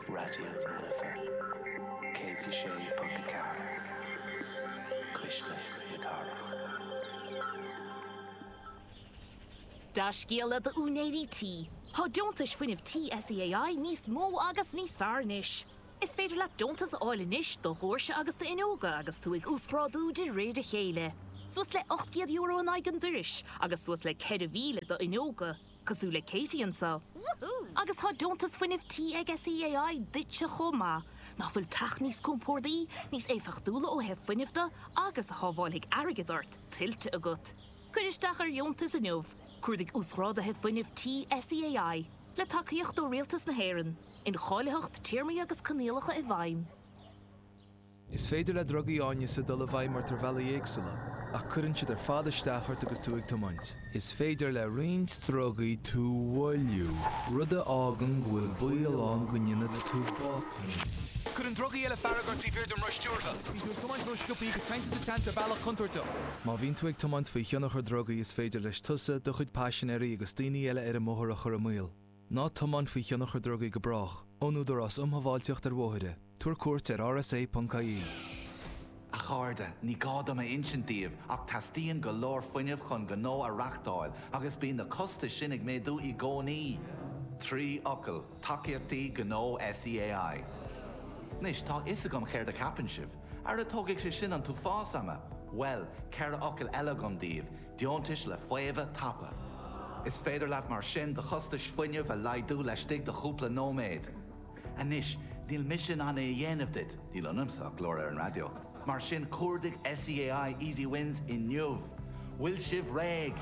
Raidió na Life 106.4, Cuisle na Cathrach. Dea-scéala d'úinéirí tí, tá deontais fuinnimh tí SEAI níos mó agus níos fearr anois! Is féidir leat deontas a fháil anois do dhóirse agus d'fhuinneoga agus tú ag uasghrádú de réir a chéile, suas le €800 in aghaidh an doiris agus suas le 4,000 d'fhuinneoga. Cosúil le Katie anseo. Woohoo! Agus tá deontas fuinnimh tí ag SEAI duitse chomh maith. Nach bhfuil teach níos compórdaí, níos éifeachtúla ó thaobh fuinnimh de agus a shábháilfidh airgead ort, tuillte agat? Cuir isteach ar dheontas inniu, cuardaigh Uasghrádaithe Fuinnimh Tí SEAI, le tacaíocht ó Rialtas na hÉireann, Incháilitheacht, Téarmaí agus Coinníollacha i bhfeidhm. Is féidir le drugaí áineasa dul i bhfeidhm ort ar bhealaí éagsúla, ach cuireann siad ar fad isteach ort agus tú ag tiomáint. Is féidir le roinnt drugaí tú a mhoilliú, rud a fhágann go bhfuil baol ann go ndéanfaidh tú botún. Cuireann drugaí eile fearg ort taobh thiar den roth stiúrtha. Bíonn tú ag tiomáint rósciobtha agus téann tú sa tseans ar bhealach contúirteach. Má bhíonn tú ag tiomáint faoi thionchar drugaí is féidir leis tusa, do chuid paisinéirí agus daoine eile ar an mbóthar a chur i mbaol. Ná tiomáin faoi thionchar drugaí go brách, ón Údarás um Shábháilteacht ar Bhóithre, tabhair cuairt ar rsa.ie. A chairde, ní gá dom a insint daoibh ach teastaíonn go leor fuinnimh chun gnó a reáchtáil agus bíonn na costais sin ag méadú i gcónaí! Trí fhocal, Tacaíochtaí Gnó SEAI. Anois, tá a fhios agam céard a cheapann sibh, Ara tógfaidh sé sin an t-uafás ama! Bhuel, ceithre fhocal eile agam daoibh, Deontais le faomhadh tapa. Is féidir leat mar sin do chostais fuinnimh a laghdú laistigh de chúpla nóiméad. Anois, níl mise in ann é a dhéanamh duit, níl ionamsa ach glór ar an raidió, mar sin cuardaigh SEAI Easy Wins inniu! Bhfuil sibh réidh?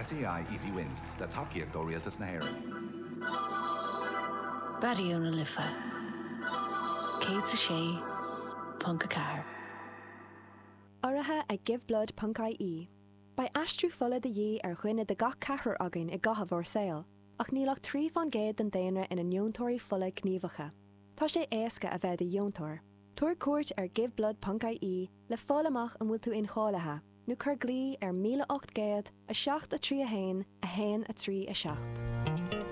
SEAI Easy Wins, le tacaíocht ó Rialtas na hÉireann. Raidió na Life 106.4. Urraithe ag Giveblood ponc IE, beidh aistriú fola de dhíth ar dhuine de gach ceathrar againn i gcaitheamh ár saol, ach níl ach trí fán gcéad den daonra ina ndeontóirí fola gníomhacha. Tá sé éasca a bheith i do dheontóir. Tabhair cuairt ar Giveblood ponc IE le fáil amach an bhfuil tú incháilithe, nó cuir glao ar 1800 7 3 1 1 3 7.